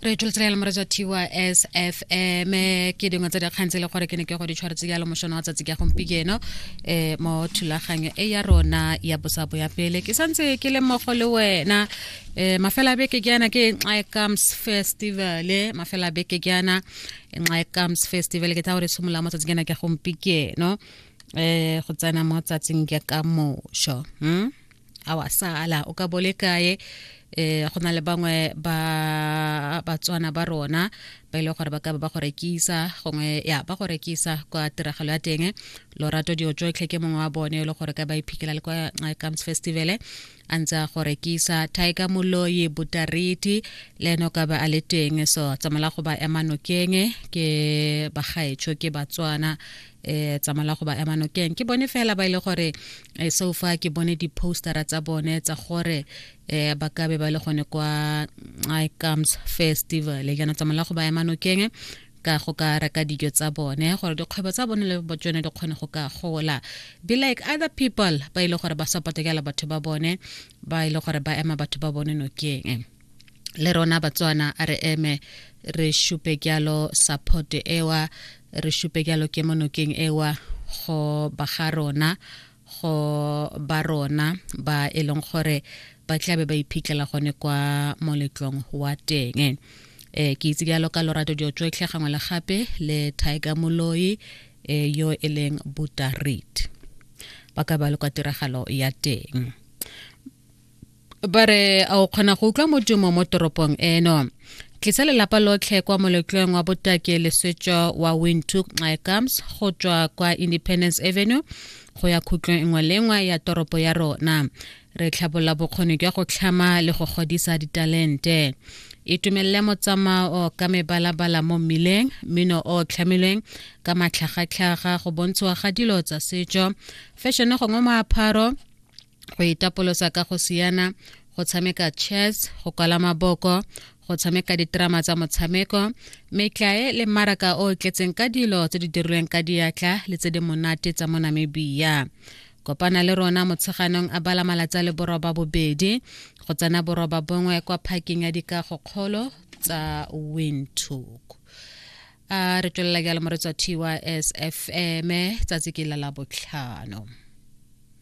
re tsholetsela le moretsa tsfm ke dingwe tsa dikgang tse e le gore ke ne ke go di tshwaretse jalo mošono wa tsatsi ka gompieno um mo thulaganyo e ya rona ya bosabo ya pele ke santse ke le mmogo le wena um mafela beke ke yana ke nxae comes festival mafela beke ke yana nxae comes festival ke tla gore tshimolola mo tsatsi ke na ke gompieno um go tsena mo tsatsing ke ka mošo um hmm? a wa sala o ka bole kae eh go na le bangwe ba batswana ba rona ba ile e gore ba ka ba go rekisa gongwe ya ba go rekisa kwa tiragalo ya teng lorato dio jotlhe ke mongwe wa bone e le gore ka ba iphikela le kwa eh, comes festival a ntse a go rekisa tiger moloi butariti le ene o ka ba a le teng so tsamala go ba ema nokeng ke bagaetsho ke batswana eh tsamala go ba ema nokeng ke bone fela ba ile e gore eh, so fa ke bone di-postera tsa bone tsa gore eh ba ka be ba le gone kwa mm, i comes festival e kana tsamala go ba ema nokeng ka go ka reka dijo tsa bone gore dikgwebo tsa bone le tsone di kgone go ka gola be like other people ba ile e gore ba support batho ba bone ba ile e gore ba ema batho ba bone nokeng le rona batswana a re eme re šupe kyalo support ewa re šupe kyalo ke monokeng ewa go ba ga rona go ba rona ba e leng gore ba tlabe ba iphitlhela gone kwa moletlong wa teng eh ke itse jalo ka lorato dio tsotlhe gangwe le gape le tiger moloi eh, yo e leng buta read ba ka ba le kwa tiragalo ya teng ba re a o kgona go utlwa modumo mo toropong eno tlisa lelapa lotlhe kwa moletlong wa botaki leswetswa wa wintook nxaekams go tswa kwa independence avenue go ya khutlong nngwe le nngwe ya toropo ya rona re tlhabola bokgoni jwa go tlhama le go godisa ditalente itumelele motsamao ka mebalabala mo mmileng mmino o tlhamilweng ka matlhagatlhaga go bontshiwa ga dilo tsa setso fashion gongwe moapharo go itapolosa ka go siana go tshameka chess go kwala maboko go tshameka diterama tsa motshameko metlae le mmaraka o tletseng ka dilo tse di dirilweng ka diatla le tse di monate tsa mo namibia kopana le rona motsheganong a bala malatsi a le boroba bobedi go tsena boroba bongwe kwa parking ya dikago kgolo tsa windhoek a re tswelela jalo mo re tswa tys fm tsatsi ke la labotlhano